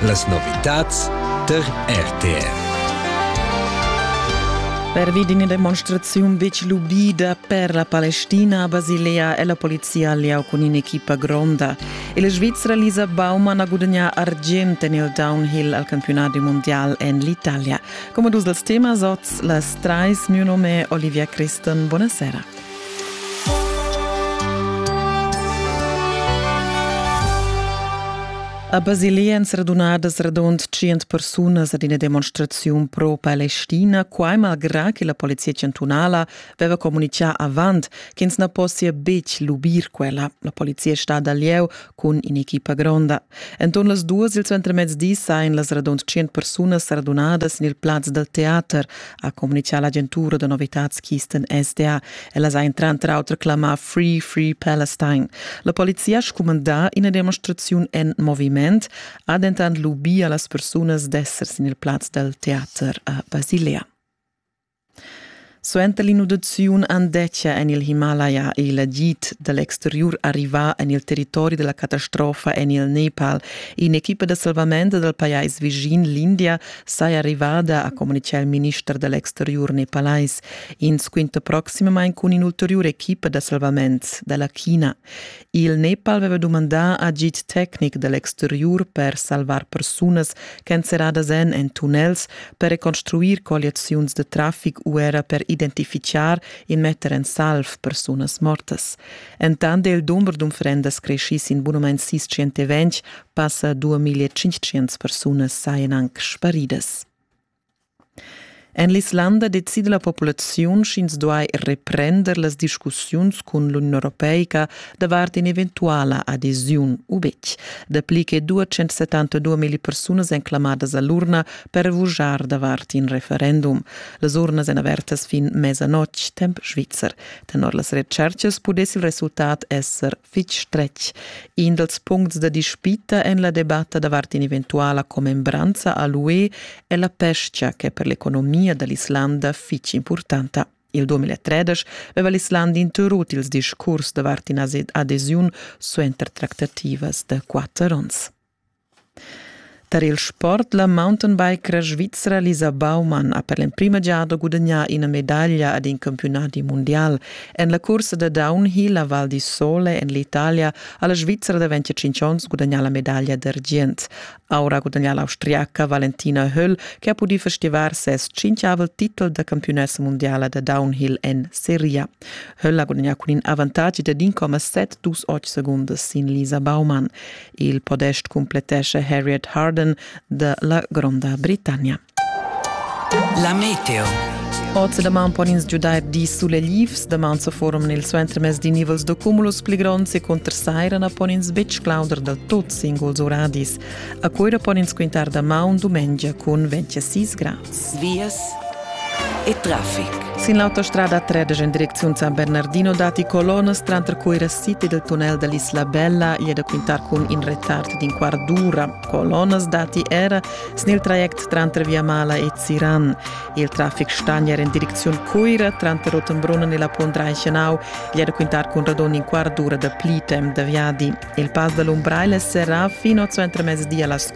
Las novitads tar RTR. Pervi d'ina demonstraziun fetg lubida per la Palestina a Basilea è la polizia liau cun in'equipa gronda. Il Svizra Lisa Baumann ha gudagnà argient en il downhill al campionat mondial en l'Italia. Come dus dels temas oz, las trais, mio nome è Olivia Christen. Buonasera. A Basilea èn radunadas radund tschient persunas ad ina demonstraziun pro-palestina, quai malgrà che la polizia chantunala aveva communitgà avant ch'ins na possia betg lubir quella. La polizia è stada a lieu cun in'equipa gronda. Enton las duas il suentermezdi sain las radund tschient persunas radunadas en il plaz dal teater, ha communichà l'agentura da novitads Kisten SDA. Ella ha intrant auter clamà Free Free Palestine. La polizia ha scumandà ina demonstraziun en moviment, ha dentant lubì a las persunas d'esser sin il plaz dal teater a Basilea. Suenter l'inudaziun andetgia en il Himalaya è il agid da l'exteriur arrivà en il territori da la catastrofa en il Nepal. In'equipa da salvament dal pajais vischin, l'India, saja arrivada, ha communitgà il minister da l'exteriur nepalais, ins quinta proximamain cun in'ulteriura equipa da salvament da la China. Il Nepal aveva dumandà agid tecnic da l'exteriur per salvar persunas ch'èn serradas en en tunnels, per reconstruir colliaziuns da traffic u era per identifichar e metter en salv persunas mortas. Entant è il dumber d'unfrendas creschì sin bunamain 620, passa 2500 persunas sajan anc sparidas. En l'Islanda decida la populaziun sch'ins duai reprender las discussiuns cun l'Uniun europeica davart in'eventuala adesiun u betg. Dapli che 272 000 persunas èn clamadas a l'urna per revugiar davart in referendum. Las urnas èn avertas fin mesanotg, temp svizzer. Tenor las retschartschas pudess il resultat esser fitg stretg. In dals puncts da dispita en la debatta davart in'eventuala commembranza a l'UE è la pestga ch'è per l'economia da l'Islanda fitg impurtanta. Il 2013 aveva l'Islanda interrut ils discurs davart in'adesiun suenter tractativas da quatter onns. Tar il sport la mountainbiker svizra Lisa Baumann ha per l'emprima giada gudagnà ina medaglia ad in campiunadi mundial. En la cursa da downhill a Val di Sole en l'Italia ha la Svizra da 25 onns gudagnà la medaglia d'argient. Aura ha gudagnà l'Austriaca Valentina Höll che ha pudì festivar ses tschintgavel titel da campiunessa mundiala da downhill en seria. Höll ha gudagnà cun in avantatg da 1,7 dus otg segundas sin Lisa Baumann. Il podest cumplettesce Harriet Harden de La Gronda Britannia. La meteo. Oz deman pon ins giudair di sule livs, deman se forum nel suo entremess di nivels de cumulus pli gronds e conter saira na pon ins betg clauder del tot singuls oradis. A coira pon ins quintar da maun dumengia cun 26 gradi. Svias e traffic. Sin l'autostrada 13 en direcziun San Bernardino datti colonas tranter Cuira City del tunnel dell'Isla Bella e da quintar cun in retard d'in quart d'ura. Colonas datti era sin il traject tranter Viamala e Ziran. Il traffic stagner en direcziun Cuira tranter Rottenbrunnen e la Pont Reichenau gli è da quintar cun radon in quart d'ura da pli temp da viadi. Il pass da l'Umbrail è serrà fino a zuentremezdi alla scuola.